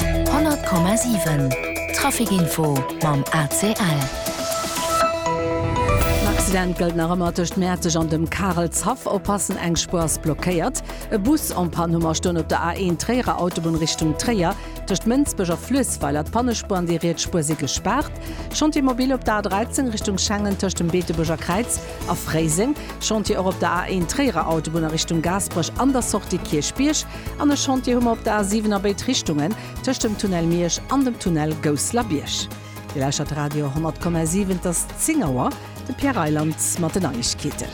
100,7 Traficinfo mam ACL. En Accident gëllt nach ëmmer tëscht Mäerzeg an dem Karelshaff. Oppassen, eng Spuer ass blockéiert. E Bus en panne, Hummer stoen op der A1 Tréierer Autobunn Richtung Tréier tëscht Mënsbech a Fluessweiler. D'Pannespuer an déi riets Spuer si gespaart. Chantier mobile op der A13 Richtung Schengen tëscht dem Beetebuerger Kräiz a Fréiseng. Chantier och op der A1 Tréierer Autobunn a Richtung Gaasperech an der Sortie Kierchbierg. an e Chantier hu mer op der A 7 a béid Richtungen, tëscht dem Tunnel Miersch an dem Tunnel Gousslerbierg. Dir lauschtert Radio 10,7, et ass 10 Auer. De Pierre Reyland mat den Neiegkeeten.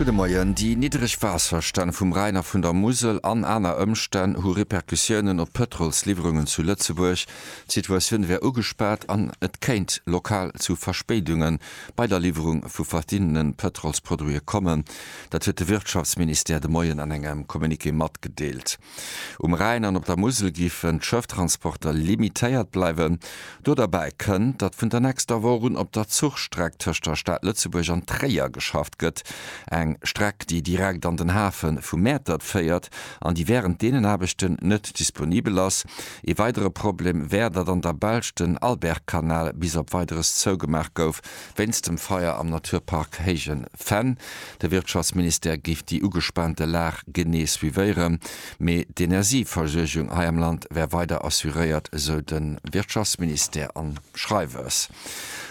Gudde Moien. Déi niddereg Waasserstänn vum Rhäin a vun der Musel an aner Ëmstänn hu Repercussiounen op d'Pëtrolsliwwerungen zu Lëtzebuerg. D'Situatioun wär ugespaat an et kéint lokal zu Verspéidunge bei der Liwwerung vu verschiddene Pëtrolsproduite kommen. Dat huet de Wirtschaftsministère de Moien an engem Communiqué matgedeelt. Um Rhäin an op der Musel géifen d'Schëfftransporter limitéiert bleiwen. Do derbäi kënnt, datt vun der nächster Woch un op der Zuchstreck tëscht der Stad Lëtzebuerg an Tréier geschafft gëtt. Eng Streck, déi direkt an den Hafe vu Mäertert féiert an déi wärend deenen Aarbechten net disponibel ass. Ee weidere Problem wär, datt an der Belsch den Albertkanal bis op Weideres zougemaach gouf, Wéinst dem Feier am Naturpark Héijen Fenn. De Wirtschaftsministère géif déi ugespaante Lag genee suivéieren, mee d'Energieversuergung hei am Land wär weider assuréiert, esou de Wirtschaftsministère am Schreiwes.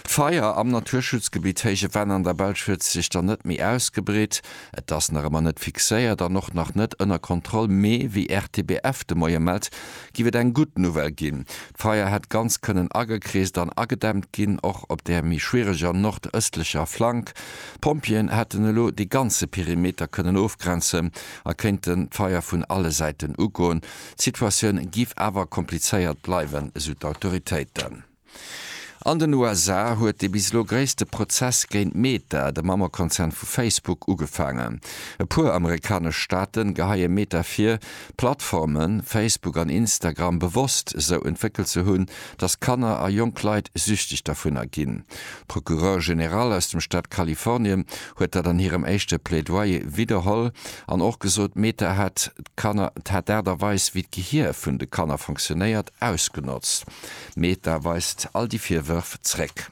D'Feier am Naturschutzgebitt Héije Fenn an der Belsch huet sech dann net méi ausgebreet. Et ass nach ëmmer net fixéiert an och nach net ënner Kontroll, mee wéi RTBF de Moie mellt, géif et eng gutt Nouvelle ginn. D'Feier hätt ganz kënnen agekreest an agedämmt ginn, och op der méi schwiereger nordëstlecher Flank. D'Pompjeeën hätten elo de ganze Perimeter kënnen ofgrenzen a kéinten d'Feier vun alle Säiten ugoen. D'Situatioun géif awer komplizéiert bleiwen, esou d'Autoritéiten. An den USA huet de bis elo gréisste Prozess géint Meta, de Mammekonzern vu Facebook, ugefaangen. E puer amerikanesch Staaten geheie Meta vir, Plattformen, Facebook an Instagram, bewosst esou entwéckelt ze hunn, datt Kanner a jonk Leit süchteg dervunner ginn. D'Procureure générale aus dem Staat Kalifornien huet dat an hirem éischte Plaidoyer widderholl an och gesot, Meta hätt d'Kanner, hätt d'Aart a Weis wéi d'Gehier vun de Kanner fonctionnéiert, ausgenotzt. Meta weist all déi Virwërf zréck.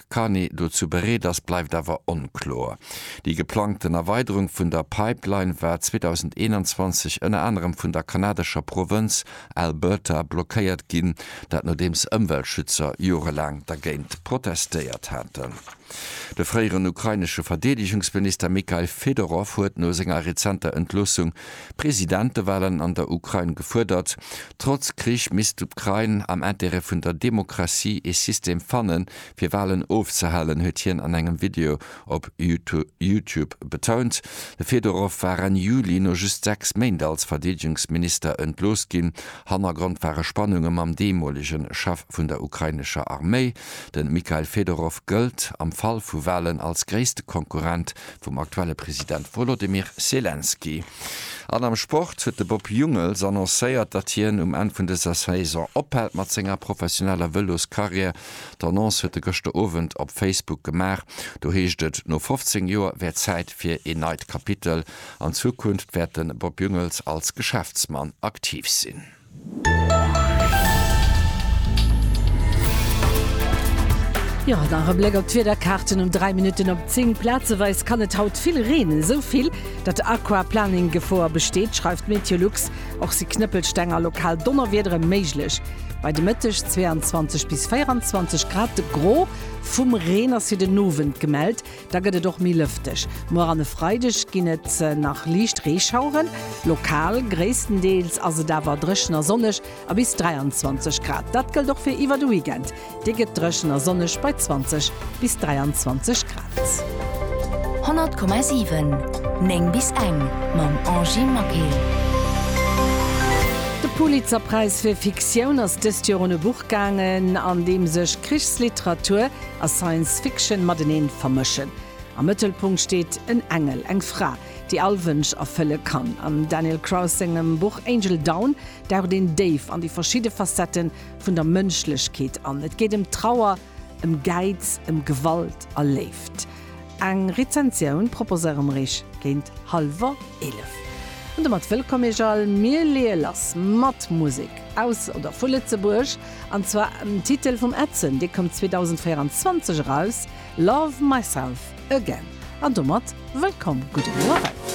Carcarny dozou bereet ass, bleift awer onkloer. Déi geplangten Erweiderung vun der Pipeline war 2021 ënner anerem vun der kanadescher Provënz Alberta blockéiert ginn, dat nodeems Ëmweltschützer jorelaang dergéint protestéiert haten. De fréieren ukrainesche Verdeedegungsminister Mykhail Fedorov huet no senger rezenter Entloossung Presidentewahlen an der Ukrain gefuerdert, Trotz Krich misst d'Ukrain am Intérêt vun der Demokratie ee System fannen, fir Wahlen ofzehalen, huet hien an engem Video op YouTube betount. De Fedorow war Enn Juli no just sechs Méint als Verdeedegungsminister entlooss ginn. Hannergrond ware Spannunge mam deemolege Chef vun der ukrainescher Arméi. De Mikhail Fedorow gëllt am Fall vu Wahlen als gréisste Konkurrent vum aktuelle President Wolodymyr Selenskyj. An am Sport huet de Bob Jungels annoncéiert, datt hien um Enn vun dëser Saison ophält mat senger professioneller Vëloscarrière. D'Annonce huet e gëschter Owend op Facebook gemaach. Do heescht et, no 15 Joer wär Zäit fir een neit Kapitel. An Zukunft wäert de Bob Jungels als Geschäftsmann aktiv sinn. Jo, an nach e Bléck op d'Wiederkaarten um 3 Minutten op 10. Plazeweis kann et haut vill reenen, esou vill, datt Aquaplaning-Gefoer besteet, schreift Meteolux. Och si Knëppelsteng a lokal Donnerwiedere méiglech. Bei de Mëtteg 22 bis 24 Grad. Gro vum Reen ass fir den Owend gemellt. Da gëtt et och méi lëfteg. Muer an e Freideg ginn et nach liicht Reeschaueren. Lokal, gréisstendeels ass et awer dréchen a sonneg a bis 23 Grad. Dat gëllt och fir iwwer de Weekend. Dee gëtt dréchen a sonneg bei 20 bis 23 Grad. 100,7 9 bis eng mam Angie Maquet. De Pulitzerpräis fir Fiktioun ass dëst Joer un e Buch gaangen, an deem sech Krichsliteratur, a Science Fiction mateneen vermëschen. Am Mëttelpunkt steet en Engel, eng Fra, déi all Wënsch erfëlle kann. Am Daniel Kraus sengem Buch Angel Down daucht een déif an déi verschidde Facette vun der Mënschlechkeet an. Et geet ëm Trauer, ëm Gäiz, ëm Gewalt a Léift. Eng Rezensioun proposéiere mer iech géint hallwer 11. An domat wëllkomm iech all. Mir leeë lass mat Musek aus oder vu Lëtzebuerg, an zwar dem Titel vum Edson, dee koum 2024 eraus, Love Myself Again. An domat wëllkomm, gudden Owend.